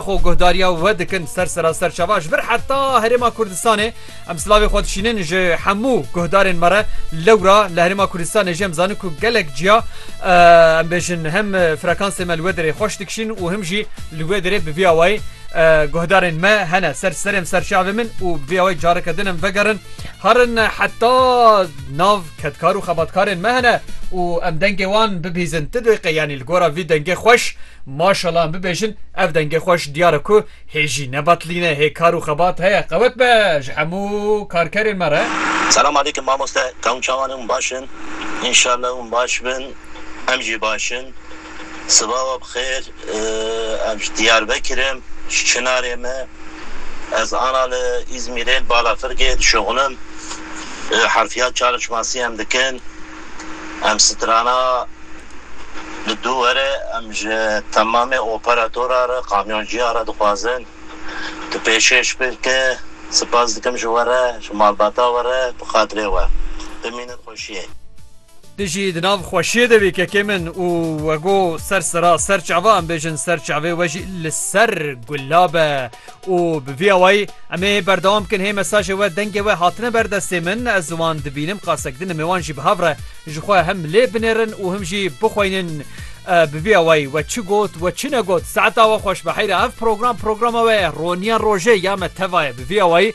Xwe guhdariya we dikin ser seraser çava ji vir heta Herêma Kurdistanê. Em silavê xwe dişînin ji hemû guhdarên me re. Lewra li Herêma Kurdistanê jî em zanin ku gelek ciya em bêjin hem frekansê me li wê derê xweş dikişîn û him jî li wê derê bi vî awayî guhdarên me hene ser serê em ser çavê min û bi vî awayî careke din em vegerin herin heta nav Kedkar û xebatkarên me hene û em dengê wan bibihîzin ti deqê yanî li gora vî dengê xweş maşala em bibêjin ev dengê xweş diyar e ku hê jî ne betlîn e hê kar û xebat heye qewet be ji hemû karkerên me re. Selam aleykum mamoste kewm çawan hûn baş in inşallah hûn baş bin em jî baş in. Siba we bixêr. Ev ji Diyarbekir im, ji Çinarê me. Ez ana li Îzmîrê li Balafirgê dişuxilim. Herfiya çalişmasî em dikin. Em strana li du were. Em ji temamê operatora re, kamyonciya re dixwazin tu pêşkêş bike. Sipas dikim ji we re, ji malbata we re bi xatirê we. Bimînin xweşiyê. Tu jî di nav xweşiyê de bî kekê min û we go ser sira ser çava em bêjin ser çavê we jî li ser gula be û bi vî awayî em ê berdewam bikin hê mesajê we dengê we hatine ber destê min ez wan dibînim qasek din ê wan jî bi hev re ji xwe hem lê binêrin û him jî bixweynin bi vî awayî we çi got we çi negot saeta we xweş be heyra ev program programa we ye roniya rojê ya me teva ye bi vî awayî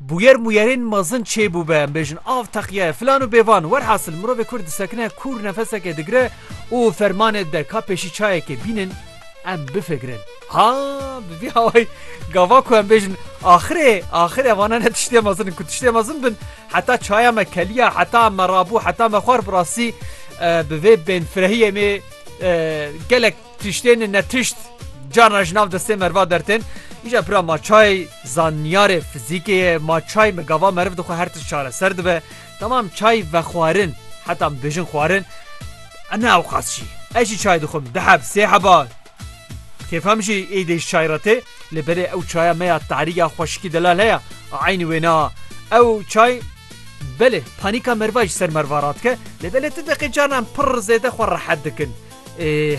Bûyer mûyerên mezin çêbû be, em bêjin av teqye, filan û bêvan. Werhasil mirovê kur disekine, kûr nefeseke digire û fermanê dide ka pêşî çayekê bînin em bifigirin. Ha, bi vî awayî gava ku em bêjin axirê, axir evana ne tiştê mezin in ku tiştê mezin bin heta çaya me keliya, heta me rabû, heta me xwar bi rastî bi vê bênfirehiyê em ê gelek Tiştên ne tişt carna ji nav destê meriva dertên. Îja pira ma çay zanyarê fizîkê ye, ma çay bi gava meriv dixwe her tişt çareser dibe. Tamam çay vexwarin heta em dibêjin xwarin e ne ewqas jî. Ez jî çay dixwim du heb sê heba kêfem jî êdî ji çay re tê lê belê ew çaya me ya tarî ya xweşikî delal heye a eynî wê ne a. Ew çay belê panîka meriva ji ser meriva radike lê belê ti deqê carna em pirr zêde xwe rehet dikin.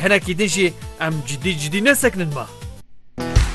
Hinekî din jî em cidî cidî nesekinin ma.